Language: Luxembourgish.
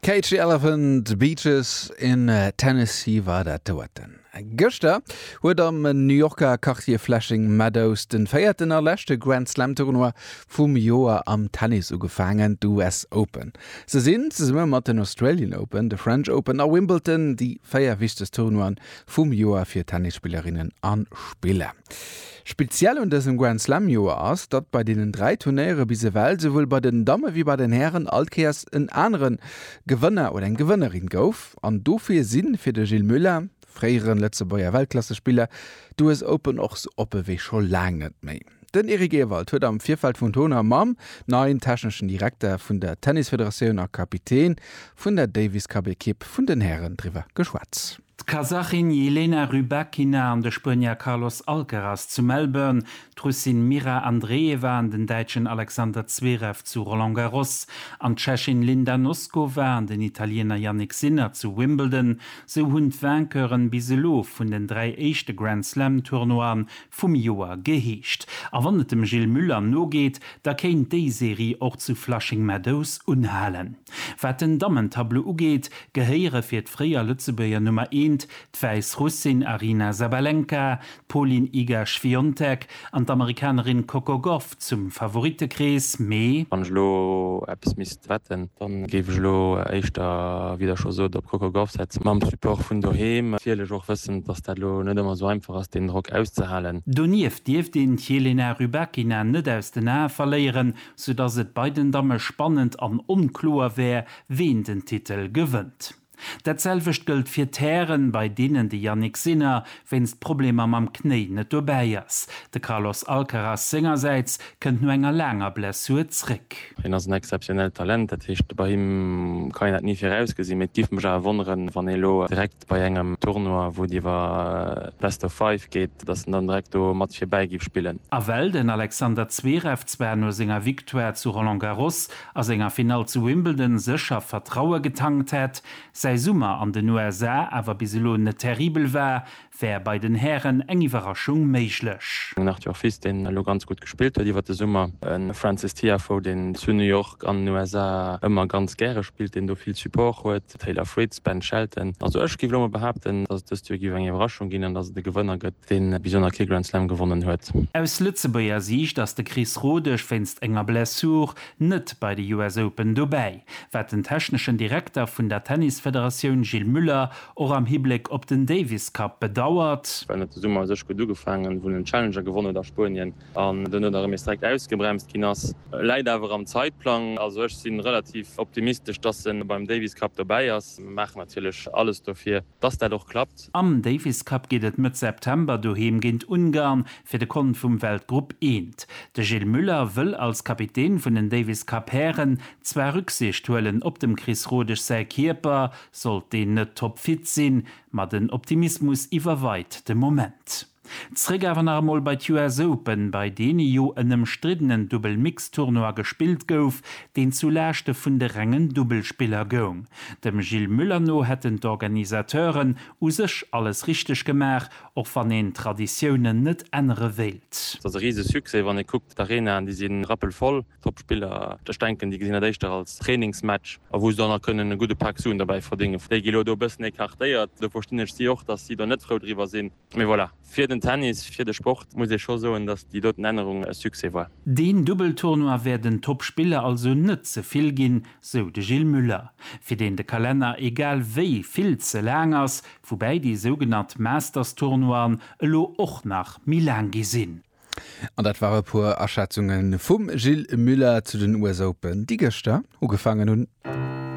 Cage the Elephant, Beaches in Tennessee war dat doten. Gëschter huet am New Yorker Quartier Flushing Meadows de véierten a leschte Grand Slam Tournoi vum Joer am Tennis ugefaangen, d'US Open. Se sinn, zesumme mat den Australian Open, de French Open a Wimbledon, déi véier wichtegst Tournoien vum Joer fir Tennisspillerinnen a spiller. Speziell un dësem Grand Slam Joer ass, datt bei deenen 3 Turnéiere bis ewell souwuel bei den Damme wéi bei den Hären all Kéiers en anere Gewënner oder eng Gewënnerin gouf an dofir si fir de Gilles Muller, fréiere Lëtzebuerger Weltklassespiller, d'US Open och sou oppe wéi scho laang net méi. Den Eric Ewald huet am Virfeld vum Tournoi mam neien techneschen Direkter vun der Tennisfederatioun a Kapitän vun der Davis Cup Ekipp vun den Hären driwwer geschwat. D'Kasachin Jelena Rybakina an de Spuenier Carlos Alcaraz zu Melbourne, d'Russin Mira Andreeva an den Däitschen Alexander Zverev zu Roland Garros an d'Tschechin Linda Noskova an den Italiener Jannik Sinner zu Wimbledon, sou hunn d'Vainqueuren bis elo vun den dräi éischte Grand-Slam-Tournoien Vum Joer geheescht. A wann et dem Gilles Muller nogeet, da kéint déi Serie och zu Flushing Meadows unhalen. Wat den Dammentableau ugeet, gehéiere fir d'fréier Lëtzebuerger Nummer eent, d'Wäiss Russin Aryna Sabalenka, d'Polin Iga Świątek an d'Amerikanerin Coco Gauff zum Favorittekrees, mee. Wann ech elo eppes misst wetten, dann géif ech elo éischter, wéi der scho sot, op Coco Gauff setzen. Mam Support vun doheem, natierlech och wëssend, dass dat elo net ëmmer esou einfach ass, deen Drock auszehalen. Donieft dierft een d'Jelena Rybakina net aus den Ae verléieren, soudass et bei den Damme spannend an onkloer wär, ween den Titel gewënnt. Dat selwecht gëllt fir Terrainen, bei deenen de Jannik Sinner wéinst Problemer mam Knéi net dobäi ass. De Carlos Alcaraz sengersäits kënnt no enger laanger Blessur zréck. Hien ass en exzeptionellt Talent, dat heescht, bei him kann een dat ni virausgesinn. Mee et géif mech awer wonneren, wann ee lo direkt bei engem Tournoi, wou et iwwer Best of Five geet, datt en dann direkt do mat virbäi géif spillen. A well den Alexander Zverev zwar no senger Victoire zu Roland Garros a senger Finall zu Wimbledon sécher Vertraue getankt hätt. Säi Summer an den USA awer bis elo net terribel war, wär bei den Hären eng Iwwerraschung méiglech. Den Arthur Fils, deen elo ganz gutt gespillt huet iwwer de Summer. E Frances Tiafoe, deen zu New York an den USA ëmmer ganz gäre spillt, deen do vill Support huet. de Taylor Fritz, Ben Shelton. Also ech géif elo mol behaapten, dass et dëst Joer géif eng Iwwerraschung ginn an dass et e Gewënner gëtt, deen bis elo nach kee Grand Slam gewonnen huet. Aus Lëtzebuerger Siicht ass de Chris Rodesch wéinst enger Blessure net bei de US Open dobäi, wat den techneschen Direkter vun der Tennisfederatioun Gilles Muller och am Hibléck op den Davis Cup bedauert. Well net de Summer u sech gutt ugefaangen, wou en den Challenger gewonnen huet a Spuenien. an duerno da rëm nees direkt ausgebremst ginn ass, läit awer am Zeitplang. Also ech si relativ optimistesch, dass en beim Davis Cup dobäi ass. Mir maachen natierlech alles dofir, dass dat och klappt. Am Davis Cup geet et Mëtt September doheem géint Ungarn fir de Kont vum Weltgrupp Eent. De Gilles Muller wëll als Kapitän vun den Davis Cup Hären zwar Rücksicht huelen op dem Chris Rodesch säi Kierper, sollt deen net toppfit sinn, ma den Optimismus iwwerweit de Moment. Zréck awer nach emol bei d'US Open, bei deene jo en ëmstriddenen Dubbel-Mixed-Tournoi gespillt gouf, deen zu Laaschte vun de rengen Dubbelspiller goung. Dem Gilles Muller no hätten d'Organisateuren u sech alles richteg gemaach, och wann een d'Traditiounen net ännere wéilt. Et ass e rise Succès, wann ee kuckt, d'Arenaen, déi si rappelvoll, d'Toppspiller, ech denken, déi gesinn dat éischter als Trainingsmatch, a wou se dann nach kënnen e gudde Pak Suen dobäi verdéngen, déi gi lo do e bëssen écartéiert. Do verstinn ech si och, datt si do net frou driwwer sinn. Mee voilà, fir den Tennis, fir de Sport muss ee scho soen, datt déi doten Ännerung e Succès war. Deen Dubbeltournoi wär den Toppspiller also net ze vill ginn, sou de Gilles Muller, fir deen de Kalenner egal wéi vill ze laang ass, woubäi déi sougenannt Masters-Tournoien elo och nach méi laang gi sinn. An dat ware puer Aschätzunge vum Gilles Muller zu den US Open, déi gëschter ugefaangen hunn.